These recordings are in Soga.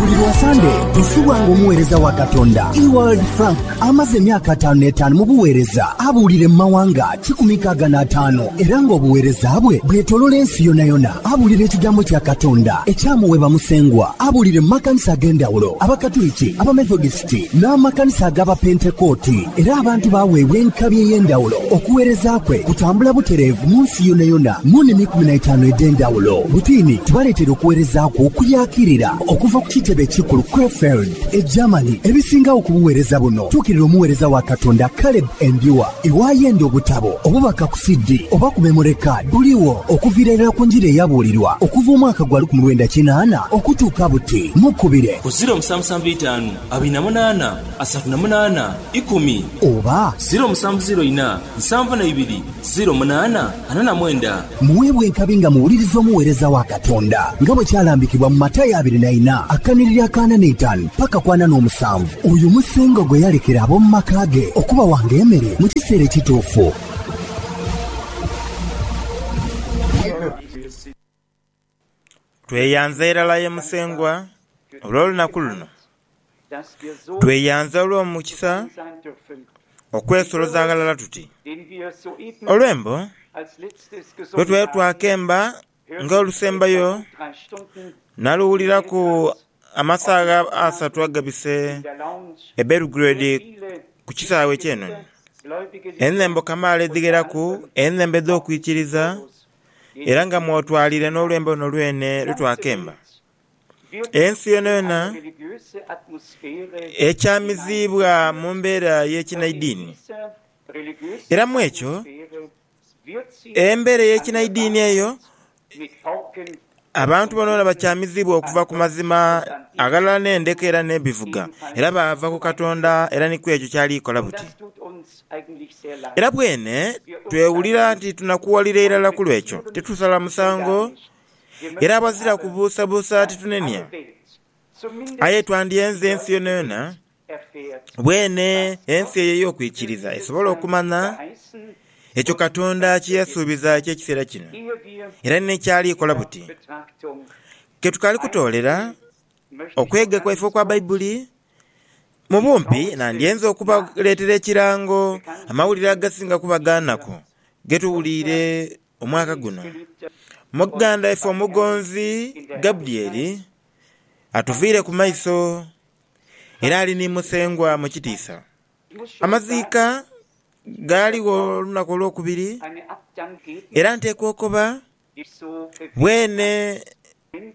Buli lwa Sande nsubwanga omuweereza wa Katonda Ewald Frank amaze emyaka ataanu n'etaanu mu buweereza abuulire mu mawanga kikumi nkaaga n'ataano era ng'obuweereza bwe bwetolola ensi yonayona. Abuulira ekigambo kya Katonda ekyamuweebwa Musengwa abuulire mu makanisa ag'endhawulo, Abakatuliki, Abamethodist, Pentekooti n'amakanisa ag'Abapentekooti, era abantu baaweebwa enkabi ey'endhawulo. Okuweereza kwe kutambula butereevu mu nsi yonayona mu nimi ikumi na itaanu edh'endhawulo. Butiini tubaleeteire okuweereza kwe okuyaakirira okuva ku kitebe ekikulu Krefeld, e Germany. Ebisingagho ku buweereza buno, tuukirira omuweereza wa Katonda Caleb Endhua. Iwe ayenda obutabo, obubaka ku CD, oba ku memore kaadi, buligho okuviira irala ku njiri eyabuulirwa okuva omwaka gwa lukumi lwenda kinaana okutuuka buti. Mukubire. Ku ziro musanvu sanvu itaanu abiri na munaana asatu na munaana ikumi. Oba. Ziro musanvu ziro ina nsanvu na ibiri ziro munaana ana na mwenda. Muweebwe enkabi nga muwuliriza omuweereza wa Katonda, nga bwe kyalambikibwa mu Matayo abiri na ina akanhiriri akaana n'eitaanu paka ku ana n'omusanvu. Oyo musingo gwe yalekera ab'omu maka ge okubawanga emere mu kiseera ekituufu. Tweyanza irala aye Musengwa olw'olunaku luno. Tweyanza olw'omukisa okwesoloza ghalala tuti, olwembo lwe twali twakemba nga olusembayo naluwuliraku amasaagha asatu agabise e Belgrade ku kisaawe eky'enoni. Enhembo kamaala edhigheraku, enhembo edh'okwikiriza. era nga mw'otwalire n'olwembo luno lwene lwe twakemba, Ensi yonayona ekyamiziibwa mu mbeera y'ekinaidini. Era mu ekyo, embeera ey'ekinaidini eyo Abantu bonaboona bakyamizibwa okuva ku mazima, aghalala n'endeka era n'ebivuga, era baava ku Katonda era ni kw'ekyo ky'ali kola buti. Era bwene twewulira nti tunakuwalira irala ku lw'ekyo, titusala musango, era aghazira kubuusabuusa titunenia. Aye twandyenze ensi yonayona Bwene, ensi eyo ey'okwikiriza esobola okumanya ekyo Katonda kye yasuubiza eky'ekiseera kino, era ni kyali kola buti. Ke tukaali kutoolera okwega kwaife okwa Baibuli, mu bumpi nandyenze okubaleetera ekirango amawulire agasinga okuba ga naku ge tuwuliire omwaka guno. Muganda waife omugonzi Gabriel atuviire ku maiso. era ali ni Musengwa mu kitiisa. Amaziika gaaligho olunaku olwokubiri, era nteekwa okoba bwene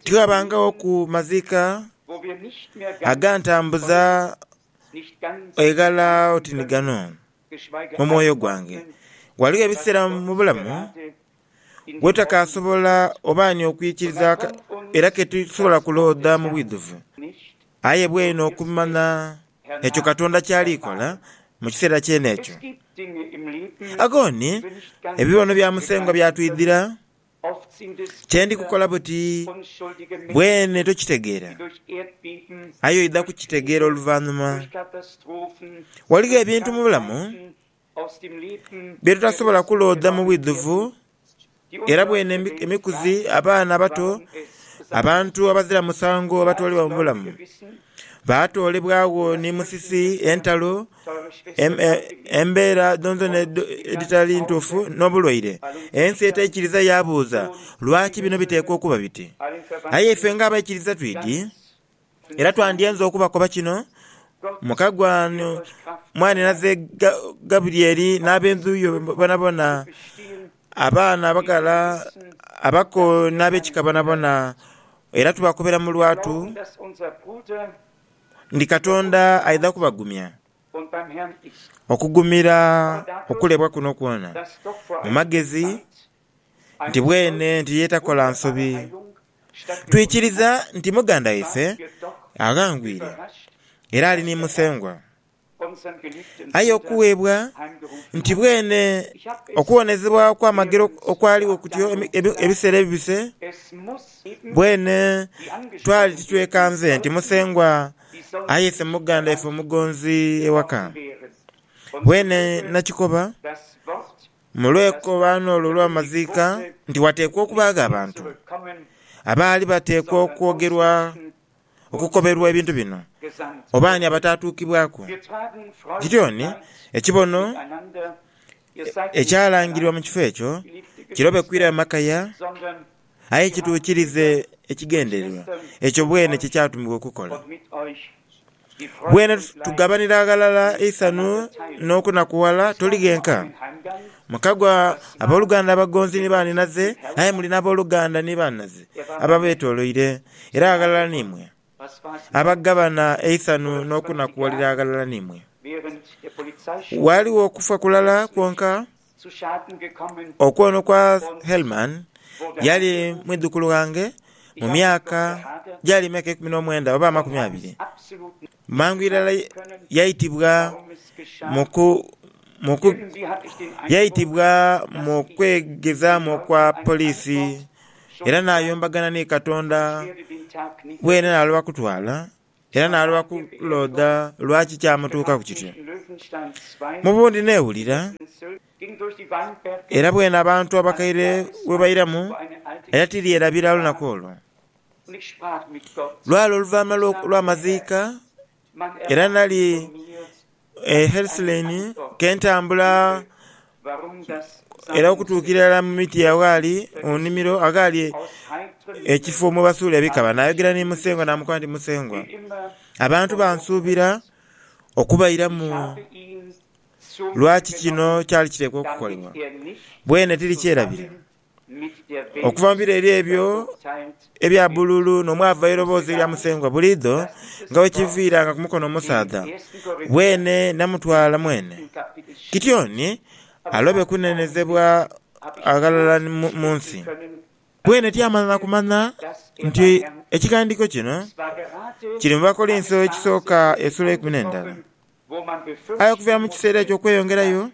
tighabangawoku maziika agantambuza eghala oti ni gano mu mwoyo gwange. Ghaligho ebiseera mu bulamu. Gwe takaasobola oba ani okwikiriza aka, era ke tusobola kuloodha mu bwidhuvu. Aye bweinho okumanya ekyo Katonda ky'ali kola mu kiseera kyene ekyo. Agoni, ebibono bya Musengwa byatwidhira. Kye ndi kukola buti bwene tokitegeera, aye oidha kukitegeera oluvanhuma. Ghaligho ebintu mu bulamu bye tutasobola kuloodha mu bwidhuvu. Era bwene emikuzi, abaana abato, abantu abazira musango abatoolebwa mu bulamu, baatoolebwagho ni musisi, entalo, embeera dhonadhona edhitali ntuufu, n'obulwaire. Ensi etaikiriza yaabuuza, Lwaki bino biteekwa okuba biti? Aye ife ng'abaikiriza twidhi. Era twandyenze okubakoba kino mu kagwa ghano, mwanhinaze Gabulyeri n'ab'endhu yo bonabona, abaana abaghala, abako n'ab'ekika bonabona, era tubakobera mu lwatu nti Katonda aidha kubagumya okugumira okulebwa kuno kwona mu magezi nti bwene nti ye takola nsobi. Twikiriza nti muganda waife aghangwire era ali ni Musengwa. Aye okuweebwa nti bwene okuwonezebwa okw'amagero okwaligho kutyo ebiseera ebibise, bwene twali titwekanze nti Musengwa ayese muganda waife omugonzi ewaka. Bwene nakikoba Mu lwekobaano olwo olw'amaziika nti wateekwa okubaagho abantu abaali bateekwa okwogerwa okukoberwa ebintu bino, oba ani abataatuukibwaku? Gidyoni ekibono ekyalangirwa mu kifo ekyo kirobe kwirayo makaya Aye kituukirize ekigendererwa ekyo bwene kye kyatumibwa okukola. Bwene tugabanira ghalala eisanhu n'okunakuwala, toli ghenka. Mukagwa ab'oluganda abagonzi ni baanhinaze, aye muli n'ab'oluganda ni baanhinaze ababeetooloire era aghalala n'imwe, abagabana eisanhu n'okunakuwalira aghalala n'imwe. Ghaligho okufa kulala kwonka Okwono kwa Hellman yali mwidhukulu ghange mu myaka gyali myaka ikumi n'omwenda oba amakumi abiri. Mangu irala yaitibwa mu kwegezaamu okwa poliisi era n'ayombagana ni Katonda bwene n'aloba kutwala. Era naaloba ku loodha lwaki kyamutuukaku kityo. Mu bundi neewulira, era bwene abantu abakaire bwe bairamu era tiryerabira lunaku olwo. Lwali oluvaanhuma lw'amaziika era nali e Herslein ke ntambula era okutuukira irala mu miti aghali mu nnhimiro aghali ekifo mwe basuula ebikaba. Naayogera ni Musengwa naamukoba nti, Musengwa, abantu bansuubira okubairamu. Lwaki kino kyali kiteekwa okukolebwa? Bwene tiri kyerabira. Okuvambira eri ebyo ebya bululu nomwava eiroboozi erya Musengwa buliidho nga wekiviira nga kumukono omusaadha weene namutwala mwene Kitioni alobe kunenezebwa aghalala munsi. Weene tiyamala nakumanya nti ekighandiiko kino kiri mu Bakolinso ekisooka esula eikumi nendala. Aye okuviira mu kiseera ekyo okweyongerayo,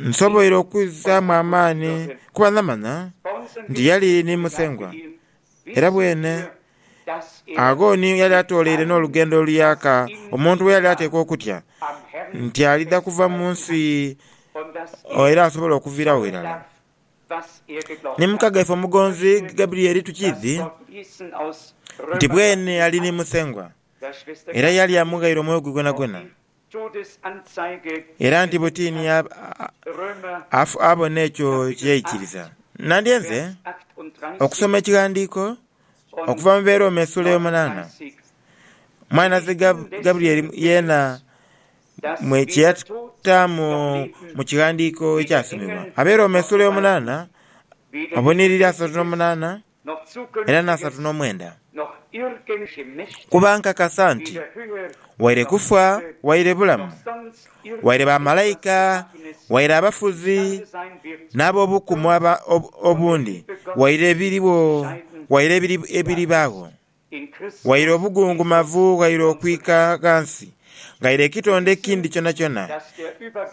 nsoboire okwizaamu amaani kuba namanya nti yali ni Musengwa, era bwene agho ni yali atooleire n'olugendo oluyaaka omuntu lwe yali ateekwa okutya nti alidha kuva mu nsi era asobole okuviiragho irala. Ni muka gaife omugonzi Gabriel tukiidhi nti bwene yali ni Musengwa. era yali amughaire omwoyo gwe gwonagwona, era nti butini abona ekyo kye yaikiriza. Nandyenze okusoma ekighandiiko okuva mu Beerooma esuula ey'omunaana, mwanaze Gabrieli yeena mwe kye yataamu mu kighandiiko ekyasomebwa. Abeerooma esuula ey'omunaana obunhiriri asatu n'omunaana. era n'asatu n'omwenda, kuba nkakasa nti waire kufa waire bulamu, waire bamalaika waire abafuzi n'ab'obukumu obundi, waire ebiriwo waire ebiribaagho, Waire obugungumavu ghaire okwika ghansi, ghaire ekitonde ekindi kyonakyona,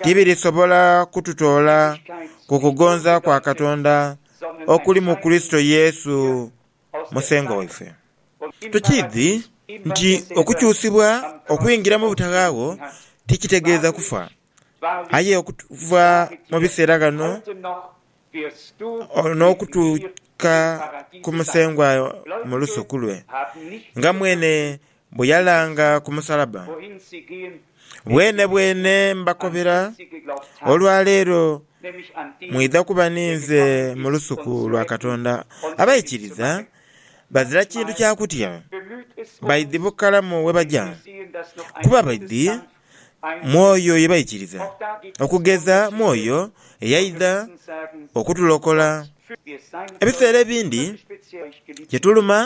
tibirisobola kututoola ku kugonza kwa Katonda okuli mu Kurisito Yesu Musengwa waife. Tukiidhi nti okukyusibwa okwingira mu butaghagho tikitegeeza kufa, Aye okuva mu biseera ghano n'okutuuka ku Musengwa mu lusuku lwe, nga mwene bwe yalanga ku musalaba, bwenebwene mbakobera, olwa leero mwidha kuba ninze mu lusuku lwa Katonda. Abaikiriza bazira kintu kya kutya, baidhi bukalamu we baja, kuba baidhi mu oyo ye baikiriza, okugeza mu oyo eyaidha okutulokola. Ebiseera ebindi kituluma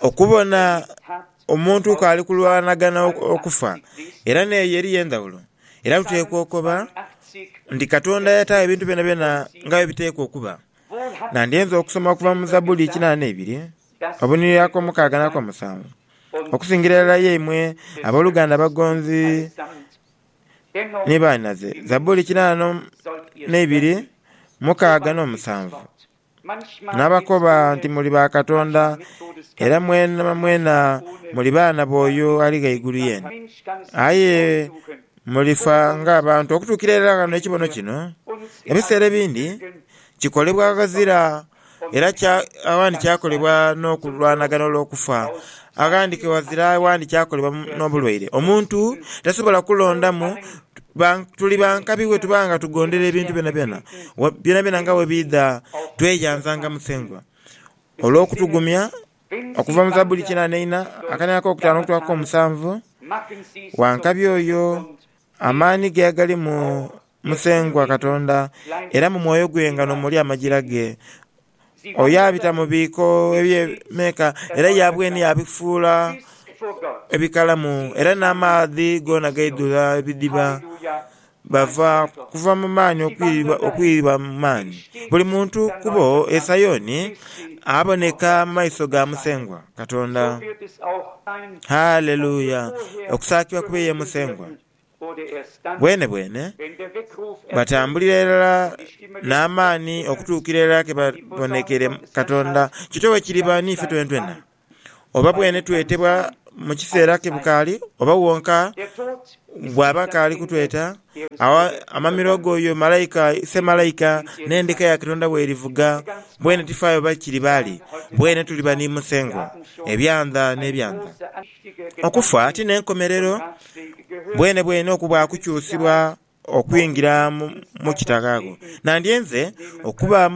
okubona omuntu k'ali kulwanagana okufa, era n'eyo eriyo endhawulo. Era tuteekwa okoba nti Katonda yataagho ebintu byonabyona nga bwe biteekwa okuba. Nandyenze okusoma okuva mu Zabuli kinaana ibiri, obunhiriri ak'omukaaga n'akomusanvu. Okusingira irala ye imwe aboluganda abagonzi ni bainaze. Zaburi kinaanu na ibiri mukaaga n'omusanvu. Nabakoba nti muli ba Katonda, era mwena mwena muli baana b'oyo ali ghaigulu yene. Aye mulifa ng'abantu okutuukira irala ghano ekibono kino ebiseera ebindi kikolebwa ghazira era aghandhi kyakolebwa n'okulwanagana olw'okufa, aghandhi ghazira aghandhi kyakolebwa n'obulwaire. Omuntu tasobola kulondamu tuli ba nkabi bwe tuba nga tugondera ebintu byonabyona, byonabyona nga bwe biidha tweyanza nga Musengwa olw'okutugumya okuva mu Zabbuli kinana ina akaina ak'okutaano okutuuka ku k'omusanvu, Wa nkabi oyo Amaani ge agali mu Musengwa Katonda, era mu mwoyo gwe nga n'omuli amagira ge. Oyo abita mu biiko eby'emeeka era yaabweni yaabifuula ebikalamu, era n'amaadhi goona gaidhula ebidhiba. Bava kuva mu maani okwidha mu maani, buli muntu kubo e Sayoni aboneka mu maiso ga Musengwa. Katonda. Haleluya! Okusaakibwa kube ye Musengwa. Bwenebwene, batambulira irala n'amaani okutuukira irala ke babonekeire Katonda. Kityo bwe kiriba n'ife twenetwena, oba bwenetwetebwa mu kiseera ke bukaali oba wonka Bw'aba akaali kutweta, agho amamiro go oyo malaika, semalaika, n'endeka ya Katonda bw'erivuga, mbwene tifaayo oba kiri baali, mbwene tuliba ni Musengwa, ebyandha n'ebyandha. Okufa ti n'enkomerero, mbwene bwene okubaaku kukyusibwa okwingira mu kitaghaagho. Nandyenze okuba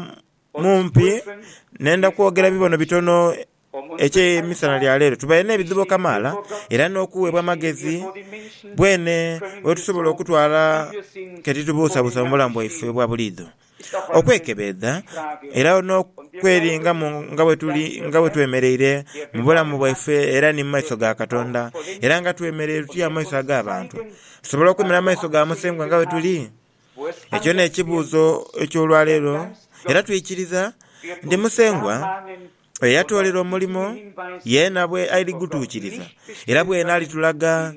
mumpi nenda kwogera bibono bitono Eky'emisana lya leero tubaire n'ebidhibo kamaala era n'okuweebwa amagezi bwene bwetusobola okutwala ke titubuusabuusa mu bulamu bwaife obwa buliidho, okwekebeedha era n'okweringamu nga bwetuli nga bwetwemereire mu bulamu bwaife era ni mu maiso ga Katonda era nga twemereire tutya mu maiso ag'abantu. Tusobola okwemerera mu maiso ga Musengwa nga bwetuli? Ekyo n'ekibuuzo eky'olwaleero, era twikiriza nti Musengwa oyo eyatoolera omulimo yeena bw'ali kugutuukiriza era bweena alitulaga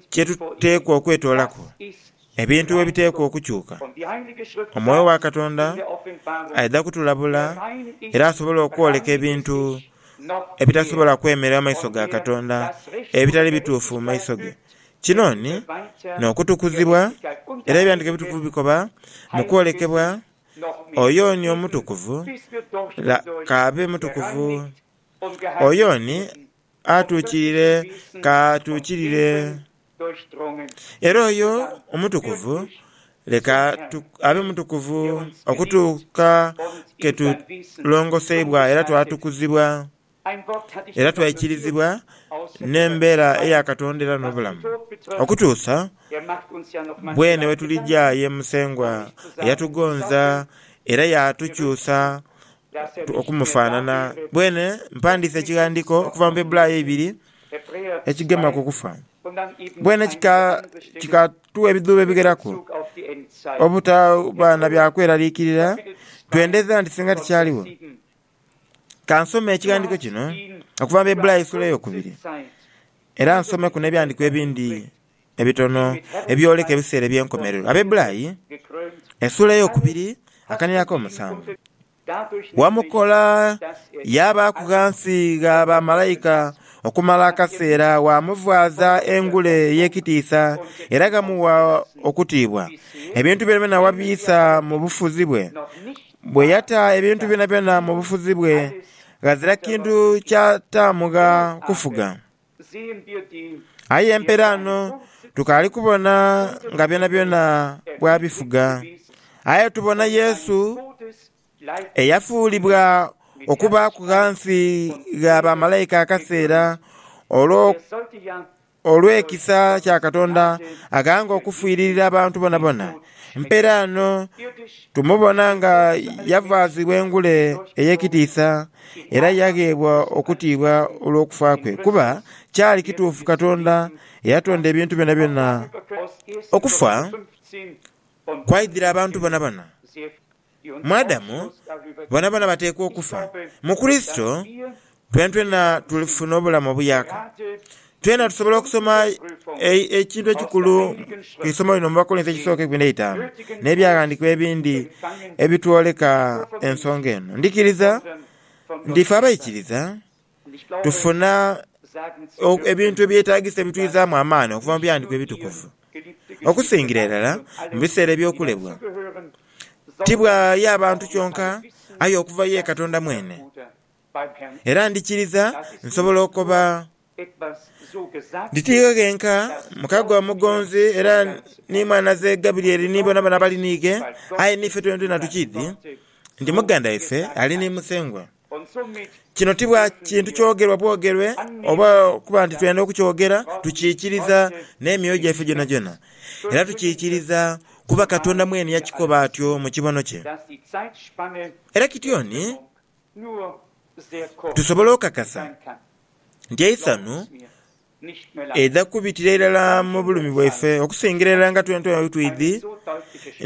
kye tuteekwa okwetoolaku, ebintu bwe biteekwa okukyuka. Omwoyo wa Katonda aidha kutulabula era asobole okwoleka ebintu ebitasobola kwemerera mu maiso ga Katonda, ebitali bituufu mu maiso ge, Kinoni n'okutukuzibwa, era Ebyandiike Ebitukuvu bikoba mu kwolekebwa oyo oni omutukuvu la k'abe mutukuvu. Oyo oni atuukirire k'atuukirire. Era oyo omutukuvu leka abe mutukuvu okutuuka ke tulongoseibwa era twatukuzibwa. era twaikirizibwa n'embeera eya Katonda era n'obulamu, okutuusa bwene bwe tulija ye Musengwa eyatugonza era yaatukyusa okumufaanana. Bwene mpandiise ekighandiiko okuva mu Baibulaayo ibiri ekigema ku kufa. Bwene kikatugha ebidhuubo ebigheraku obutaba na bya kweraliikirira twendeza nti singa tikyaligho. Ka nsome ekighandiiko kino okuva mu Baibulayo Suula Eyokubiri, era nsomeku n'ebighandiiko ebindi ebitono ebyoleka ebiseera eby'enkomerero. Abaibulayo esuula eyokubiri akaniiro ak'omusanvu, Wamukola yaabaaku ghansi gha bamalaika okumala akaseera, waamuvaaza engule ey'ekitiisa era ghamugha okutiibwa. Ebintu byonabyona wabiisa mu bufuzi bwe, Bwe yata ebintu byonabyona mu bufuzi bwe, ghazira kintu kyataamugha kufuga. Aye mperaano tukaali kubona nga byonabyona bwabifuga. Aye tubona Yesu eyafuulibwa okubaaku ghansi gha bamalaika akaseera olw'okutukomawo. Olw'ekisa kya Katonda aghanga okufiiririra abantu bonabona, mperaano tumubona nga yavaazibwa engule ey'ekitiisa era yagheebwa okutiibwa olw'okufa kwe, kuba kyali kituufu Katonda eyatonda ebintu byonabyona okufa kwaidhira abantu bonabona. Mu Adamu, boonaboona bateekwa okufa. Mu Kurisito, twenatwena tulifuna obulamu obuyaaka. Twena tusobola okusoma ekintu ekikulu ku isomo lino mu Bakolinso Ekisooka eibiri n'eitaanu, n'ebyaghandiikibwa ebindi ebitwoleka ensonga eno. Ndhikiriza nti ife abaikiriza tufuna ebintu ebyetaagisa ebitwidhaamu amaani okuva mu Bighandhikwa Ebitukuvu. Okusingira irala mu biseera eby'okulebwa, ti bwaaya bantu kyonka aye okuva ye Katonda mwene. Era ndikiriza nsobola okoba nti tiighe ghenka mukago omugonzi era ni mwanaze Gabriel ni boonabona abali niighe, aye niife twenatwena tukiidhi nti muganda waife ali ni Musengwa. Kino ti bwa kintu kyogerwa bwogerwe oba okuba nti twenda okukyogera. Tukiikiriza n'emyoyo gyaife gyonagyona. Era tukiikiriza kuba Katonda mwene yakikoba atyo mu kibono kye. Era kityo ni tusobola okukakasa nti eisanhu Edha kubitira irala mu bulumi bwaife okusingira irala nga twentwena bwe twidhi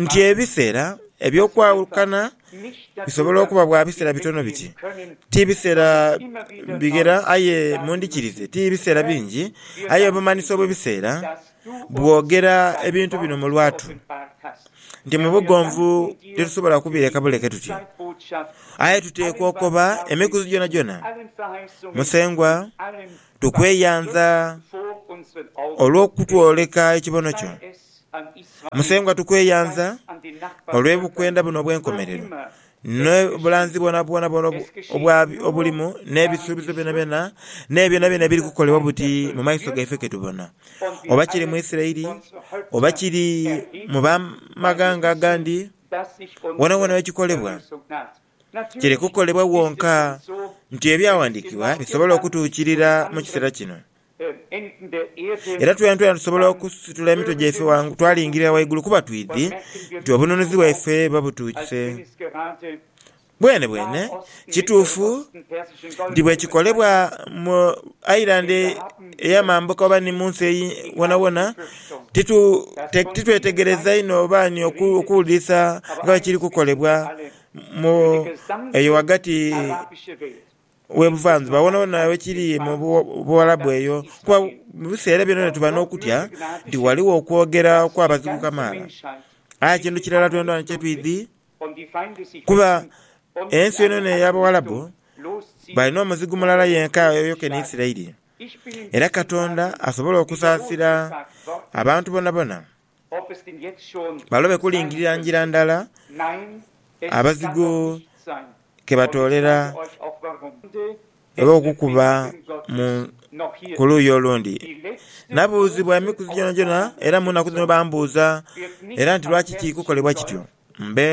nti ebiseera eby'okwawukana bisobola okuba bwa biseera bitono biti. Ti biseera bighera aye mundhikirize, ti biseera bingi aye obumanhisi obw'ebiseera bwogera ebintu bino mu lwatu nti mu bugonvu titusobola kubireka buleke tuti. Aye tuteekwa okoba emikuzi gyonagyona Musengwa Tukweyanza olw'okutwoleka ekibono kyo. Musengwa tukweyanza olw'ebukwenda buno obw'enkomerero, n'obulanzi bwonabwona obulimu, n'ebisuubizo byonabyona, n'ebyonabyona ebiri kukolebwa buti mu maiso gaife ke tubona. Oba kiri mu Isiraeli, oba kiri mu b'amaghanga agandi, wonawona we kikolebwa, Kiri kukolebwa wonka nti Ebyawandiikibwa bisobole okutuukirira mu kiseera kino. Era twenka tusobola okusitula emitwe gyaife ghangulu twalingirira waigulu kuba twidhi nti obununuzi bwaife buba butuuse. Bwenebwene kituufu nti bwe kikolebwa mu Ireland ey'amambuka oba ni mu nsi wonawona, titwetegereza inho oba ni okuwulirisa nga bwe kiri kukolebwa. mu eyo ghagati w'ebuvanjuba, wonawona we kiri mu Buwalabu eyo, kuba mu biseera byonabyo tuba n'okutya nti ghaligho okwogera okw'abazigu kamaala. Aye kintu kirala twendha kye twidhi kuba ensi yonayona ey'Abawalabu balina omuzigu mulala yenka oyo keni Isiraeli. Era Katonda asobola okusaasira abantu bonabona. Balobe kulingirira ngira ndala abazigu ke batoolera oba okukuba ku luuyi olundi. Nabuuzibwa emikuzi gyonagyona era mu nnaku dhino bambuuza era nti lwaki kiri kukolebwa kityo. Mbe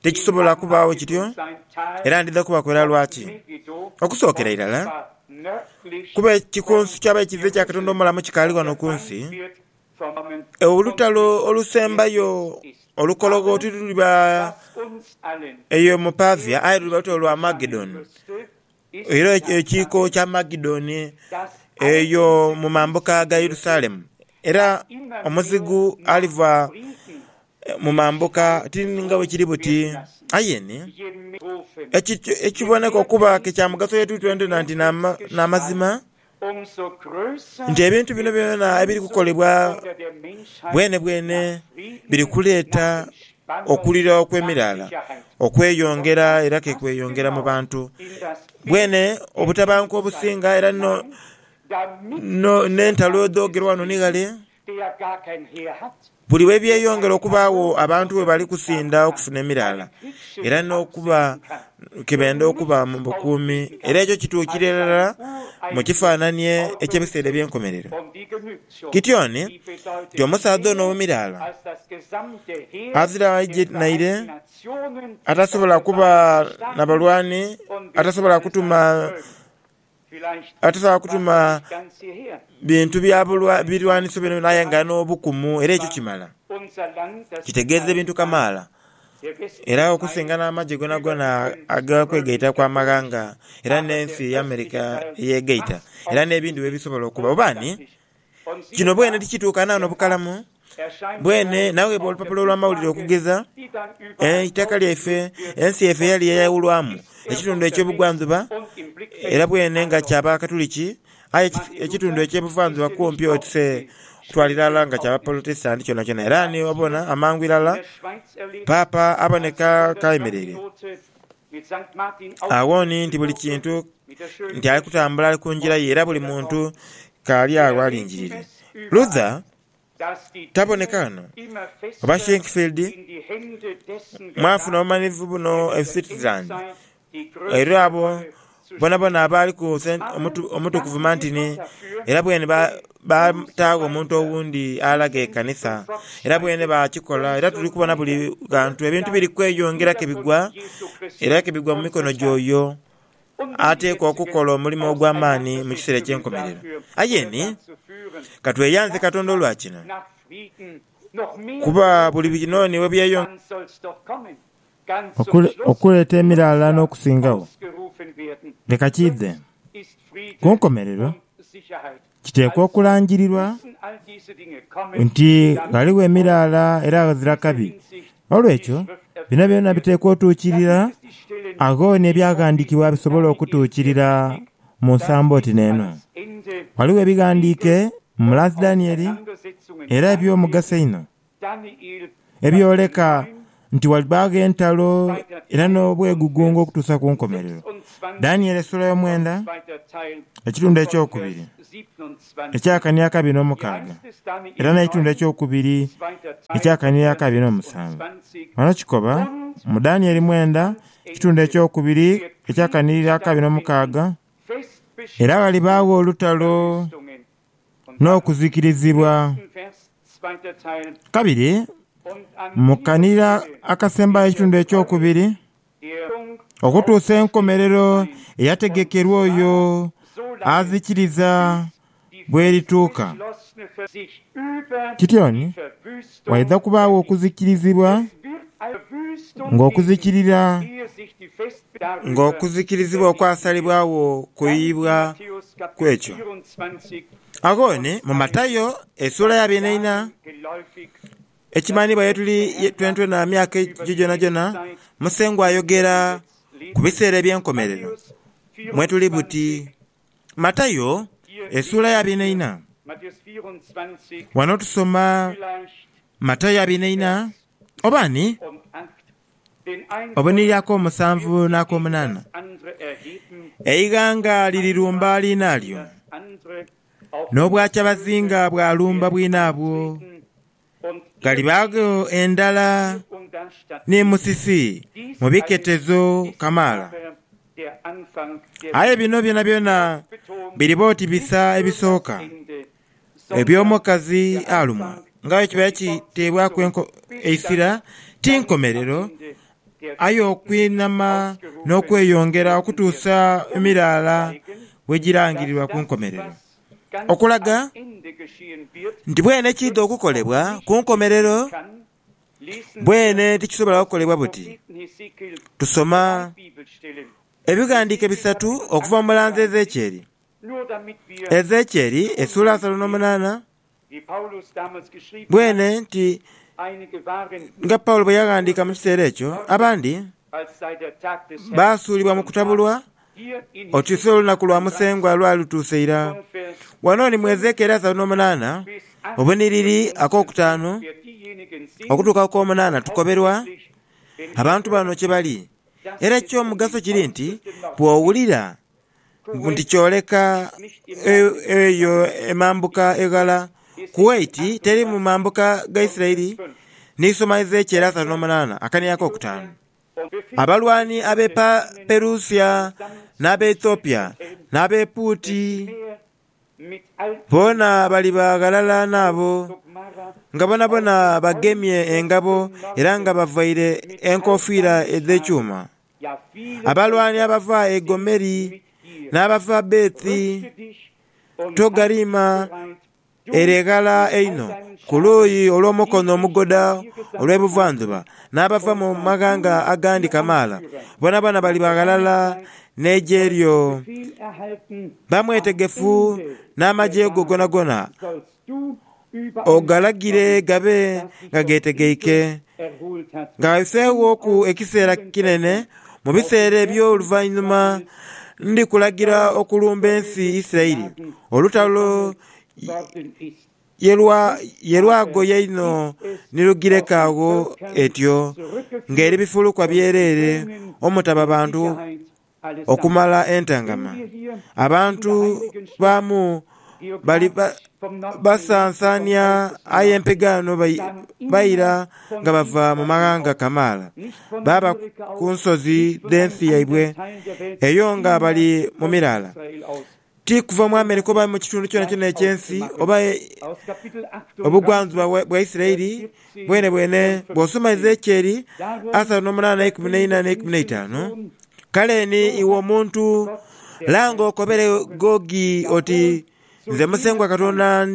tikisobola kubaagho kityo era ndidha kubakolela lwaki. Okusookera irala, kuba ekikunsu ky'aba ekizibe kya Katonda omulamu kikaali ghano ku nsi, Olutalo olusembayo olukologho tiluliba eyo mu Pavia aye luliba lutalo lwa Magedoni, era ekiiko kya Magedoni eyo mu mambuka ga Yerusalemu. Era omuzigu aliva mu mambuka, ti nga bwe kiri buti. Aye ni, ekiboneka okuba ke kya mugaso eri itwe twena nti n'amazima. nti ebintu bino byona ebiri kukolebwa bwenebwene biri kuleeta okulira okw'emiraala okweyongera era ke kweyongera mu bantu. Bwene obutabanguko obusinga era n'entalo edhoogerwa ghano ni ghale Buli lwe byeyongera okubaagho abantu bwe bali kusinda okufuna emiraala era n'okuba ke benda okuba mu bukuumi, era ekyo kituukira irala mu kifaananie eky'ebiseera eby'enkomerero. Gideoni ti omusaadha ono ow'emiraala azira aije naire, atasobola kuba na balwani, atasobola kutuma Atosobola kutuma bintu bya birwaniso byonabyona aye nga ali n'obukumu era ekyo kimala. Kitegeeza ebintu kamaala era okusinga n'amagye gonagona ag'okwegaitaku amaghanga era n'ensi America eyegaita era n'ebindhi webisobola okuba. Oba ani? Kino bwene tikituukana n'obukalamu bwene. Naweebwa olupapula olw'amawulire okugeza eitaka lyaife, ensi yaife eyali yayawulwamu ekitundu eky'obugwanjuba era bwene nga kya Bakatuliki, aye ekitundu eky'ebuvanjuba kumpi oti se kutwala irala nga kya Bapolotesitanti kyonakyona. Era ni obona amangu irala Paapa aboneka k'ayemereire. Agho ni nti buli kintu nti ali kutambula ali ku ngira ye era buli muntu k'ali agho alingirire. Luther taboneka ghano, oba Schenkfield, mwafuna obumanhivu buno e Switzerland, era abo Boonaboona abaali ku Omutukuvu Mantini, era bweene baataagho omuntu owundi alaga ekanisa, era bweene baakikola, era tuli kubona buli ghantu ebintu biri kweyongera ke bigwa, era ke bigwa mu mikono gy'oyo ateekwa okukola omulimo ogw'amaani mu kiseera eky'enkomerero. Aye ni, ka tweyanze Katonda olwa kino, kuba buli binooni we byeyongera, Okuleeta emiraala n'okusingagho leka kiidhe. Ku nkomerero, kiteekwa okulangirirwa nti ghaligho emiraala era ghazira kabi. N'olwekyo, bino byona biteekwa otuukirira. Agho n'Ebyaghandiikibwa bisobola okutuukirira mu nsambo oti n'eno. Ghaligho ebighandiike mu Last Danieli era eby'omugaso einho. ebyoleka nti ghalibaagho entalo era n'obwegugungo okutuusa ku nkomerero. Danieli esuula y'omwenda, ekitundu ekyokubiri eky'akania akabiri n'omukaaga era n'ekitundu ekyokubiri eky'akania akabiri n'omusanvu. Ghano kikoba mu Danieli mwenda ekitundu ekyokubiri eky'akania akabiri n'omukaaga, era ghalibaagho olutalo. n'okuzikirizibwa. Kabiri, mu kanira akasembayo ekitundu ekyokubiri, okutuusa enkomerero eyategekerwa oyo azikiriza bw'erituuka. Kityoni waidha kubaagho okuzikirizibwa ng'okuzikirira ng'okuzikirizibwa okwasalibwagho kuyuyibwa ku ekyo. Agho ni mu Matayo esuula ya bina ina. Ekimanhiibwa ye tuli twenatwena myaka egyo gyonagyona, Musengwa ayogera ku biseera eby'enkomerero mwe tuli buti. Matayo esuula ya bina ina. Ghano tusoma Matayo abina ina oba ni Obunhiri ak'omusanvu n'ak'omunaana, eighanga lirirumba liinalyo, n'obwakyabazinga bwalumba bwinaabwo, ghalibaagho endhala ni musisi mu biketezo kamaala. Aye bino byonabyona biriba oti bisa ebisooka. Eby'omukazi alumwa nga aye kiba kiteebwaku eisira ti nkomerero, aye okwinama n'okweyongera okutuusa emiraala bwe girangirirwa ku nkomerero, okulaga nti bwene ekiidha okukolebwa ku nkomerero bwene tikisobola kukolebwa buti. Tusoma ebighandiiko bisatu okuva mu mulanzi Ezekieli Ezekieli esuula asatu no munaana, bwene nti nga Paulo bwe yaghandiika mu kiseera ekyo, abandi baasuulibwa mu kutabulwa oti si olunaku lwa Musengwa lwali lutuuse ira. Ghano ni mu Ezekieli asatu no munaana, obunhiriri ak'okutaanu okutuuka ku k'omunaana tukoberwa abantu bano kye bali. Era eky'omugaso kiri nti bw'owulira nti kyoleka eyo emambuka eghala. Kuwaiti teri mu mambuka ga Isiraeli n'isoma Ezekieli asatu n'omunaana akainhia ak'okutaanu. Abalwani ab'e Perusia n'ab'e Ethiopia n'ab'e Puuti boona baliba ghalala n'abo, nga boonaboona bagemye engabo era nga bavaire enkofiira edh'ekyuma. Abalwani abava e Gomeri n'abava Bethi Togariima ere eghala einho ku luuyi olw'omukono omugoda olw'ebuvandhuba, n'abava mu maghanga agandi kamaala, boonaboona baliba ghalala n'eigye lyo. Ba mwetegefu n'amagye go gonagona ogalagire gabe nga geetegeike, ng'ayoseeghoku ekiseera kinene. Mu biseera eby'oluvanhuma ndikulagira okulumba ensi Isiraeli. Olutalo ye lwagoya inho ni lugireka agho etyo, ng'eri bifulukwa byereere omutaba bantu. okumala entangama, abantu baamu bali basansaania aye empegaano baira nga bava mu maghanga kamaala, baaba ku nsozi dh'ensi yaibwe eyo nga bali mu miraala. Ti kuva mu Amerika oba mu kitundu kyonakyona eky'ensi, oba e, obugwanzibwa bwa Isiraeli bwenebwene, bw'osoma Ezeekyeri asatu n'omunaana eikumi n'eina n'eikumi n'eitaanu, Kale ni, iwe omuntu, langa okobere Gogi oti, Nze Musengwa Katonda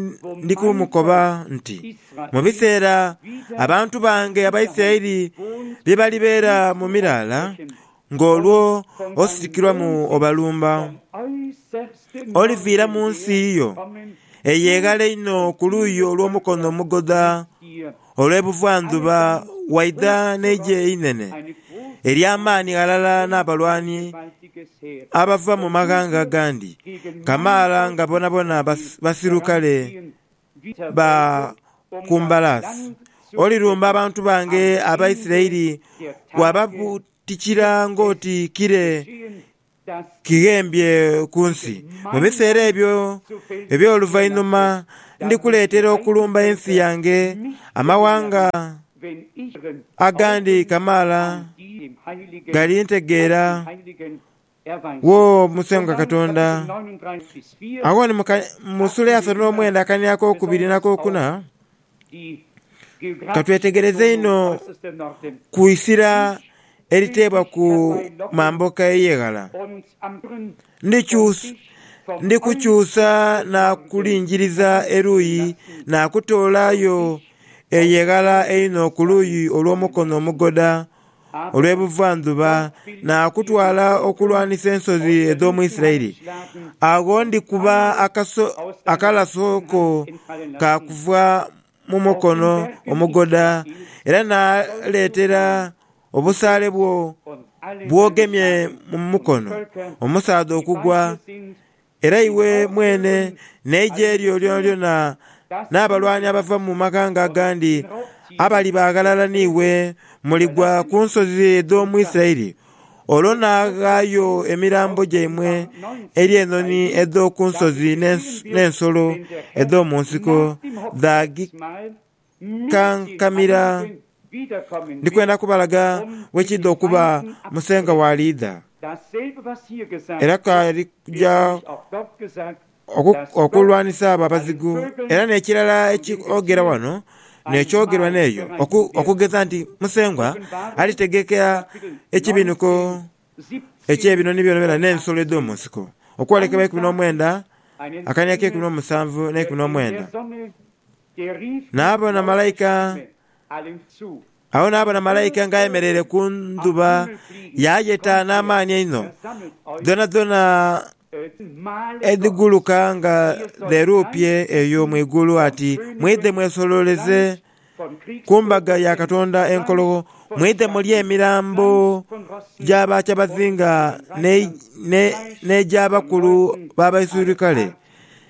ndi kumukoba nti, Mu biseera abantu bange Abaisiraeli bye balibeera mu miraala, Ng'olwo ositukirwa mu obalumba, oliviira mu nsi yo ey'eghala einho ku luuyi olw'omukono omugodha olw'ebuvandhuba, waidha n'eigye einene ery'amaani ghalala n'abalwani abava mu maghanga agandi kamaala nga bonabona basirukale. ba ku mbalaasi, olirumba abantu bange Abaisiraeli waababuutikira ng'oti kire kighembye ku nsi. Mu biseera ebyo eby'oluvainhuma ndikuleetera okulumba ensi yange amawanga agandi kamaala galintegeera wo Musengwa Katonda. Agho ni mu suula eyasatu n'omwenda akania ak'okubiri n'akokuna, ka twetegereze inho ku isira eriteebwa ku mambuka ey'eghala. Ndikukyusa naakulingiriza eruuyi naakutoolayo eyo eghala einho ku luuyi olw'omukono omugoda olw'ebuvandhuba, naakutwala okulwanisa ensozi edh'omu Isiraeli. Agho ndikuba akaso akalaso ko kaakuva mu mukono omugoda, era naaleetera obusaale bwo bw'ogemye mu mukono omusaadha okugwa, Era iwe mwene n'eigye lyo lyonalyona, n'abalwani abava mu maghanga agandi abali baghalala n'iwe, muligwa ku nsozi edh'omu Isiraeli. Olwo naaghaayo emirambo gyaimwe eri enhonhi edh'oku nsozi n'ensolo edh'omu nsiko Kankamira, ndi kwenda kubalaga we kiidha okuba Musengha w'aliidha. Era k'alija okulwanisa abo abazigu. Era n'ekirala eky'oogera wano n'ekyoogerwa n'eyo, okugeza nti Musengwa alitegeka ekibinuko eky'ebinoni byonabyona n'ensolo edh'omu nsiko. Okwolekebwa eikumi n'omwenda, akania ak'eikumi n'omusanvu n'eikumi n'omwenda. Naabona malaika, agho naabona malaika ng'ayemereire ku ndhuba, yaayeta n'amaani einho, dhoonadhoona edhiguluka nga dheruupye eyo mu igulu ati, Mwidhe mwesolooleze ku mbaga ya Katonda enkologho, mwidhe mulye emirambo gya bakyabazinga n'egy'abakulu b'abaisirukale.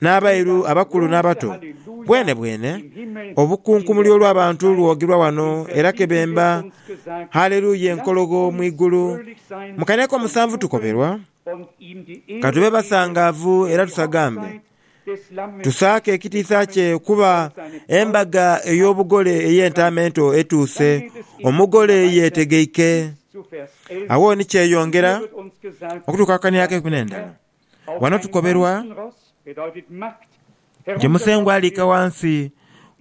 N'abairu, abakulu n'abato, bwenebwene obukunkumuli olw'abantu lwogirwa wano era ke bemba Haleluya enkologho mu igulu. Mu kane ak'omusanvu tukoberwa. Ka tube basangaavu era tusagambe, tusaake ekitiisa kye, kuba embaga ey'obugole ey'Entaama Ento etuuse, Omugole yeetegeike. Agho ni kyeyongera okutukaakaniaku enkwe n'endhala. Ghano tukoberwa gye Musengwa aliika ghansi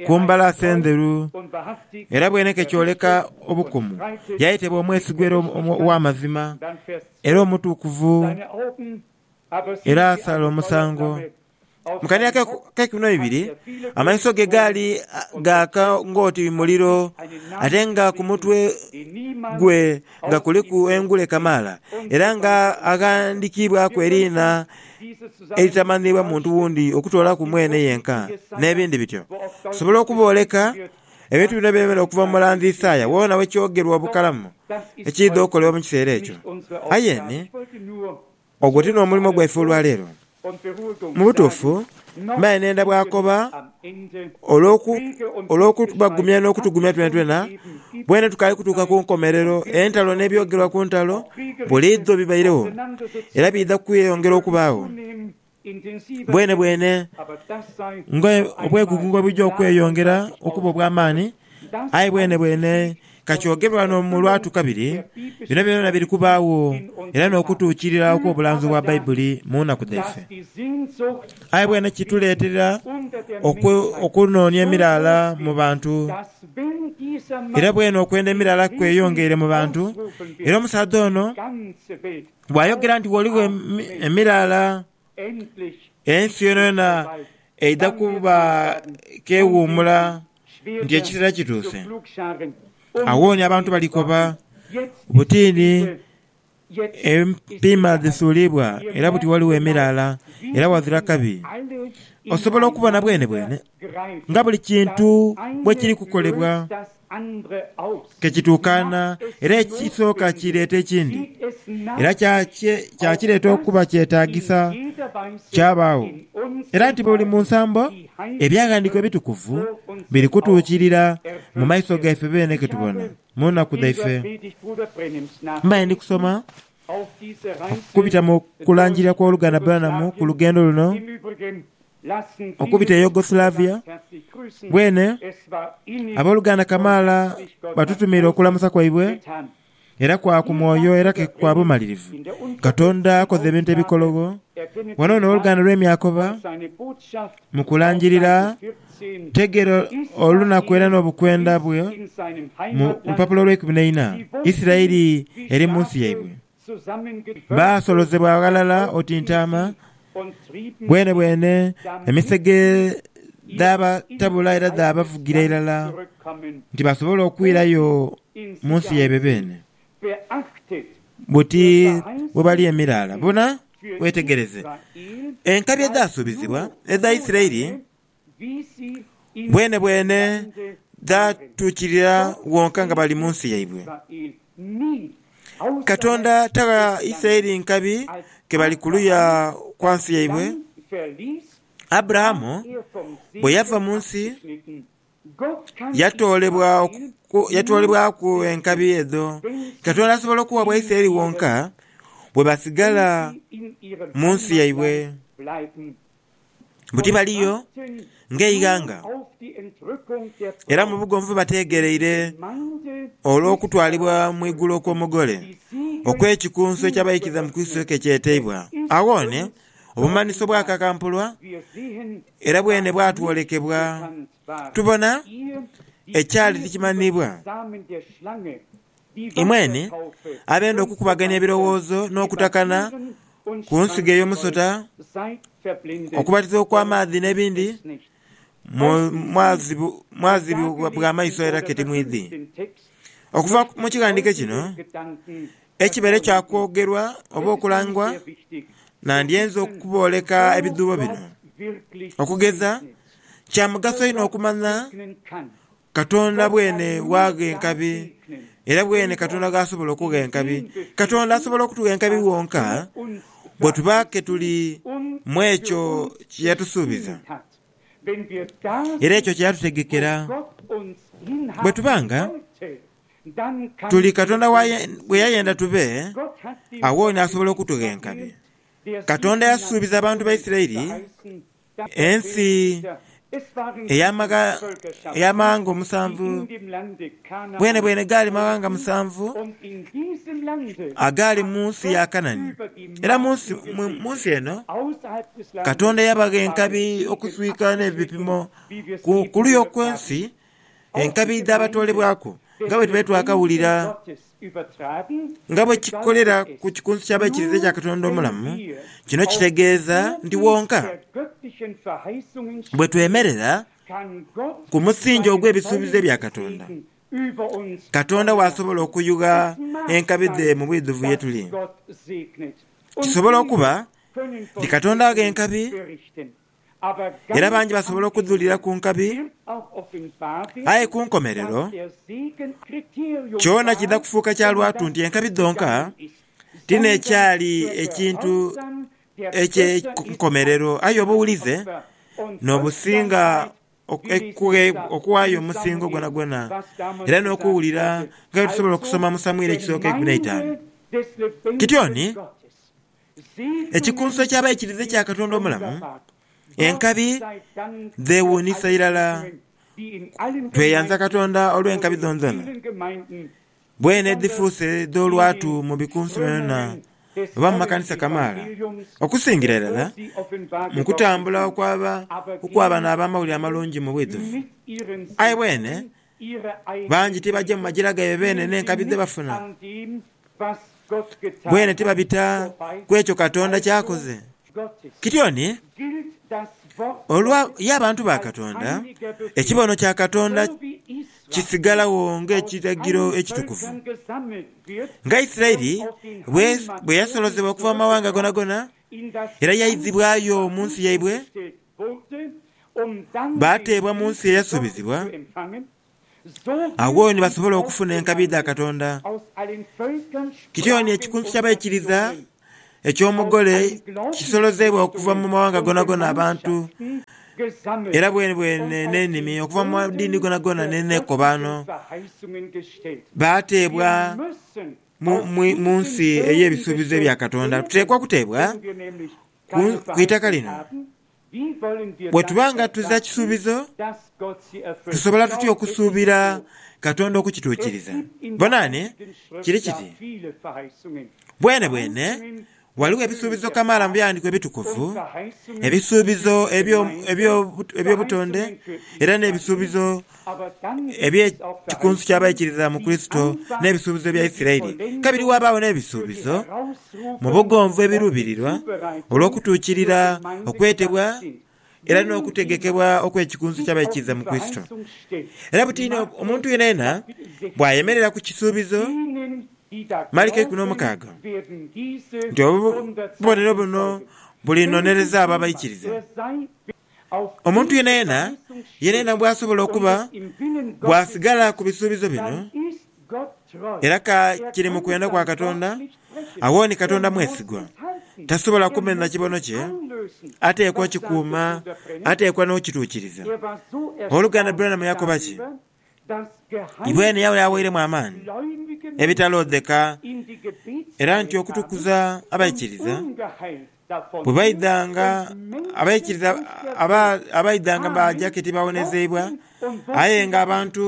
ku mbalaasi endheru era bweneka ekyoleka obukumu, yaye teba omwesigwa era ow'amazima era omutukuvu era asala omusango. Mu kainhira ak'eikumi n'eibiri, amaiso ge gaali gaaka ng'oti muliro, ate nga ku mutwe gwe nga kuliku engule kamaala, era nga aghandikiibwaku eriina eritamanhiibwa muntu wundi okutoolaku mwene yenka, n'ebindi bityo. Nsobola okubooleka ebintu bino ebyemera okuva mu mulanzi Isaia wona we kyogerwa obukalamu ekiidha okolebwa mu kiseera ekyo. Aye ni Ogwo ti n'omulimo gwaife olwa leero. Mu butuufu, mbaire neenda bwakoba olw'okubagumya n'okutugumya twenatwena, bwene tukaali kutuuka ku nkomerero. Entalo n'ebyogerwa ku ntalo buliidho bibairegho, era biidha kweyongera okubaagho. Bwenebwene nga obwegugungo bwe buja okweyongera okuba obw'amaani, aye bwenebwene ka kyogerwe ghano mu lwatu kabiri, bino byonabyona biri kubaagho era n'okutuukirira okw'obulanzi obwa Baibuli mu nnaku dhaife. Aye bwene kituleetera okunoonia emiraala mu bantu. Era bwene okwenda emiraala kweyongeire mu bantu, era omusaadha ono Bwayogera nti ghaligho emiraala ensi yonayona eidha kuba k'ewuumula nti ekiseera kituuse. Agho ni abantu balikoba buti ni empiima dhisuuliibwa era buti ghaligho emiraala era ghazira kabi. Osobola okubona bwenebwene nga buli kintu bwe kiri kukolebwa ke kituukaana era ekisooka kireeta ekindi, era kya kireeta okuba kyetaagisa kyabaagho, era nti buli mu nsambo Ebyaghandiikibwa Ebitukuvu biri kutuukirira mu maiso gaife beene ke tubona mu nnaku dhaife. Mbaire ndi kusoma okubita mu kulangirira kw'Oluganda Branham ku lugendo luno okubita e Yugoslavia. Bwene, aboluganda kamaala batutumiire okulamusa kwaibwe, era kwa ku mwoyo era ke kwa bumalirivu. Katonda akoze ebintu ebikologho ghano n'oluganda lwe Myakoba mu kulangirira. Tegeera olunaku era n'obukwenda bwe mu lupapula olw'eikumi n'eina, Isiraeli eri mu nsi yaibwe. Baasolozebwa ghalala oti ntaama, bwenebwene emisege dhaabatabula era dhaabavugira irala nti basobole okwirayo mu nsi yaibwe beene. Buti bwe bali emiraala. Bona, weetegereze enkabi edhaasuubizibwa edha Isiraeli. Bwenebwene dhaatuukirira wonka nga bali mu nsi yaibwe. Katonda tagha Isiraeli nkabi ke bali kuluya kwa nsi yaibwe. Aburahamu bwe yava mu nsi, yatoolebwaku enkabi edho. Katonda asobola okugha Abaisiraeli wonka bwe basigala mu nsi yaibwe. mbu tibaliyo ng'eighanga, era mu bugonvu bateegereire olw'okutwalibwa mu igulu okw'Omugole okw'ekikunsu eky'abaikiriza mu Kurisito ke kyeteibwa. Aghone obumanhiso bwakakampulwa, era bwene bwatwolekebwa. Tubona ekyali tikimanhiibwa. Imwenhe abenda okukubagania ebirowoozo n'okutakana ku nsigo ey'omusota, okubatiza okw'amaadhi n'ebindi, mwazibwa bwa maiso era ke timwidhi. Okuva mu kighandiiko kino, ekibeere kya kwogerwa oba okulangwa, nandyenze okubooleka ebidhuubo bino. Okugeza, kya mugaso inho okumanya Katonda bwene waagha enkabi, era bwene Katonda gh'asobola okugha enkabi. Katonda asobola okutugha enkabi wonka bwe tuba ke tuli mu ekyo kye yatusuubiza era ekyo kye yatutegekera. Bwe tuba nga tuli Katonda bwe yayenda tube, agho nasobola okutugha enkabi. Katonda yasuubiza abantu ba Isiraeli Ensi ey'amaghanga omusanvu bwenebwene gaali maghanga musanvu agaali mu nsi ya Kanani. Era mu nsi eno Katonda yabagha enkabi okuswika n'ebipimo ku luya okw'ensi Enkabi edh'abatoolebwaku, nga bwe tubaire twakawulira nga bwe kikolera ku kikunsu ky'Abaikiriza ekya Katonda omulamu, kino kitegeeza nti wonka bwe twemerera ku musingi ogw'ebisuubizo bya Katonda, Katonda waasobola okuyugha enkabi dhe mu bwidhuvu ye tuli. Kisobola okuba nti Katonda agha enkabi era bangi basobola okudhulira ku nkabi. Aye ku nkomerero, kyona kiidha kufuuka kya lwatu nti enkabi dhonka ti n'ekyali ekintu eky'enkomerero, aye obuwulize n'obusinga okuwaayo omusingo gwonagwona. Era n'okuwulira nga bwe tusobola okusoma mu Samwiri ekisooka eikumi n'eitaanu. Kityoni? Ekikunso eky'abaikiriza ekya Katonda omulamu, enkabi dheewuunhisa irala. Tweyanza Katonda olw'enkabi dhonadhona. Bwene edhifuuse dh'olwatu mu bikunsu byonabyoona oba mu makanisa kamaala, okusingira irala mu kutambula okw'abamawulire amalungi mu bwidhuvu. Aye bwene Bangi tibaja mu magira gaibwe beene n'enkabi dhe bafuna. Bweene tibabita ku ekyo Katonda ky'akoze. Kityoni, olwa ye abantu ba Katonda, ekibono kya Katonda kisigalagho ng'ekiragiro ekitukuvu. Nga Isiraeli bwe yasolozebwa okuva mu mawanga goonagona era yaizibwayo mu nsi yaibwe, Baateebwa mu Nsi Eyasubizibwa, agho ni basobole okufuna enkabi dha Katonda. Kityoni ekikunsu ky'abaikiriza eky'Omugole kisolozeibwa okuva mu mawanga gonagona abantu, era bwenebwene n'enimi, okuva mu madiini gonagona n'enekobaano. Baateebwa mu Nsi ey'ebisuubizo ebya Katonda. Tuteekwa kuteebwa ku itaka lino. Bwe tuba nga tuza kisuubizo, tusobola tutya okusuubira Katonda okukituukiriza? Bonani, kiri kiti, Bwenebwene ghaligho ebisuubizo kamaala mu Bighandiiko Ebitukuvu, ebisuubizo eby'obutonde era n'ebisuubizo eby'ekikunsu ky'abaikirira mu Kurisito n'ebisuubizo bya Isiraeli. Kabiri wabaagho n'ebisuubizo mu bugonvu ebiruubirirwa olw'okutuukirira okwetebwa era n'okutegekebwa okw'ekikunsu ky'abaikiriza mu Kurisito. Era buti omuntu yenayena bw'ayemerera ku kisuubizo, Maliko ikumi n'omukaaga, nti obubonero buno bulinonereza abo abaikiriza. Omuntu yenayena yenayena bw'asobola okuba bw'asigala ku bisuubizo bino, era ka kiri mu kwenda kwa Katonda, agho ni Katonda mwesigwa, tasobola kumenha kibono kye, ateekwa okikuuma, ateekwa n'okituukiriza. Ow'oluganda Branham yakoba ki? Ibweene yaaba yaawairemu amaani ebitaloodheka, era nti okutukuza abaikiriza bwe baidhanga, abaikiriza abaidhanga baaja ke tibaawonezeibwa, aye ng'abantu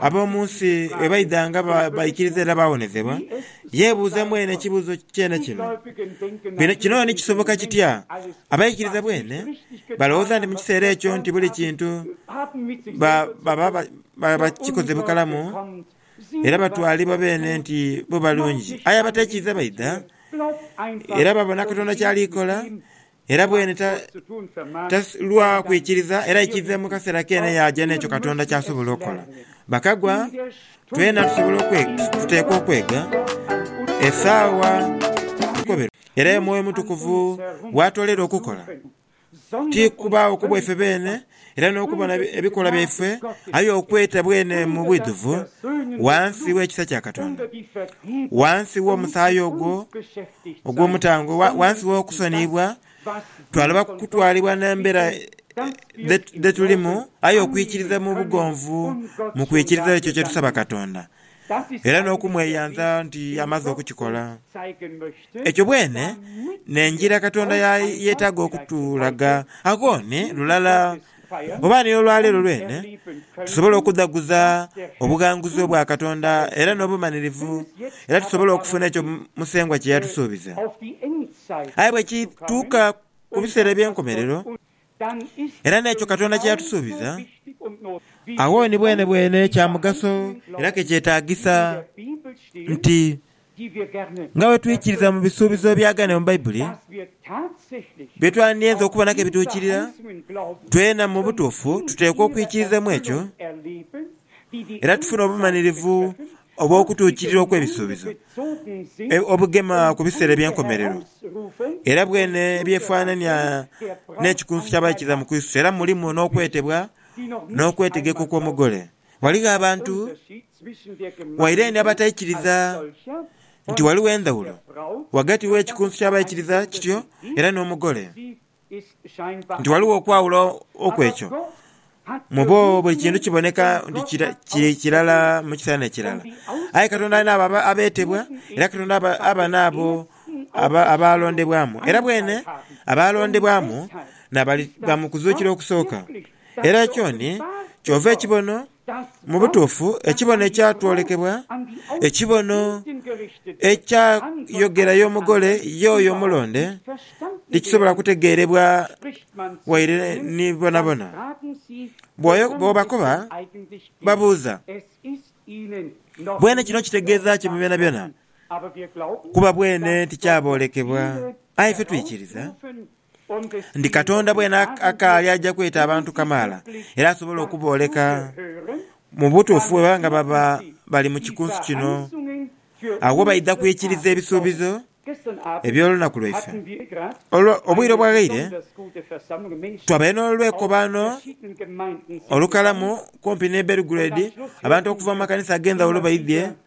ab'omu nsi bwe baidhanga baikiriza era baawonezebwa, Yeebuuze mwene ekibuuzo kyene kino, Bino kino ni kisoboka kitya? Abaikiriza bwene balowooza nti mu kiseera ekyo nti buli kintu baba bakikoze bukalamu era batwalibwa beene nti bo balungi. Aye abatekiiza baidha era babona Katonda ky'ali kola Era bwene ta, ta lwa kwikiriza, era ekive mu kaseera keene yaaja n'ekyo Katonda ky'asobola okola. Bakagwa, twena tusobola okwe, tuteekwa okwega esaawa tukoberwe. Era Omwoyo Omutukuvu waatoolera okukola, ti kubaagho ku bwaife beene, era n'okubona ebikolwa byaifwe, aye okweta bwene mu bwidhuvu ghansi w'ekisa kya Katonda, ghansi w'omusaayi ogwo ogw'omutango, ghansi w'okusoniyibwa, twaloba kutwalibwa n'embeera dhe tulimu, aye okwikiriza mu bugonvu mu kwikiriza ekyo kye tusaba Katonda. era n'okumweyanza nti amaze okukikola. Ekyo bwene n'engira Katonda ya yeetaaga okutulaga. Agho ni lulala oba ni olwaleero lwene tusobola okudhaguza obughanguzi obwa Katonda era n'obumanirivu era tusobola okufuna ekyo Musengwa kye yatusuubiza. Aye bwe kituuka ku biseera eby'enkomerero, era n'ekyo Katonda kye yatusuubiza, agho ni bwenebwene kya mugaso era ke kyetaagisa nti nga bwe twikiriza mu bisuubizo ebyagaanibwa mu Baibuli, bye twandyenze okubona ke bituukirira, twena mu butuufu tuteekwa okwikiriza mu ekyo era tufune obumanirivu oba okutuukirira okw'ebisuubizo obugema ku biseera eby'enkomerero, era bwene byefaanania n'ekikunsu ky'abaikiriza mu Kurisito, era mulimu n'okwetebwa n'okwetegeka okw'Omugole. Ghaligho abantu wairendi abataikiriza nti ghaligho endhawulo ghagati w'ekikunsu ky'abaikiriza kityo era n'Omugole. nti ghaligho okwawula okw'ekyo mu bo buli kintu kiboneka nti kiri kirala mu kiseera n'ekirala. Aye Katonda alina abo abeetebwa, era Katonda aba n'abo abaalondebwamu. Era bwene abaalondebwamu n'abaliba mu kuzuukira okusooka. Era ekyoni kyova ekibono Mu butuufu, ekibono ekyatwolekebwa, ekibono ekyayogera y'Omugole ye oyo omulonde, tikisobola kutegeerebwa waire ni boonaboona. Bw'obakoba, babuuza, Bwene kino kitegeeza ki mu byonabyona? Kuba bwene tikyaboolekebwa, aye ife twikiriza. nti Katonda bwena akaali aja kweta abantu kamaala era asobole okubooleka mu butuufu bwe baba nga baba bali mu kikunsu kino agho baidha kwikiriza ebisuubizo eby'olunaku lwaife. Olwo obwire obwaghaire twabaire n'olwekobaano olukalamu kumpi n'e Belgrade, abantu okuva mu makanisa ag'endhawulo baidhie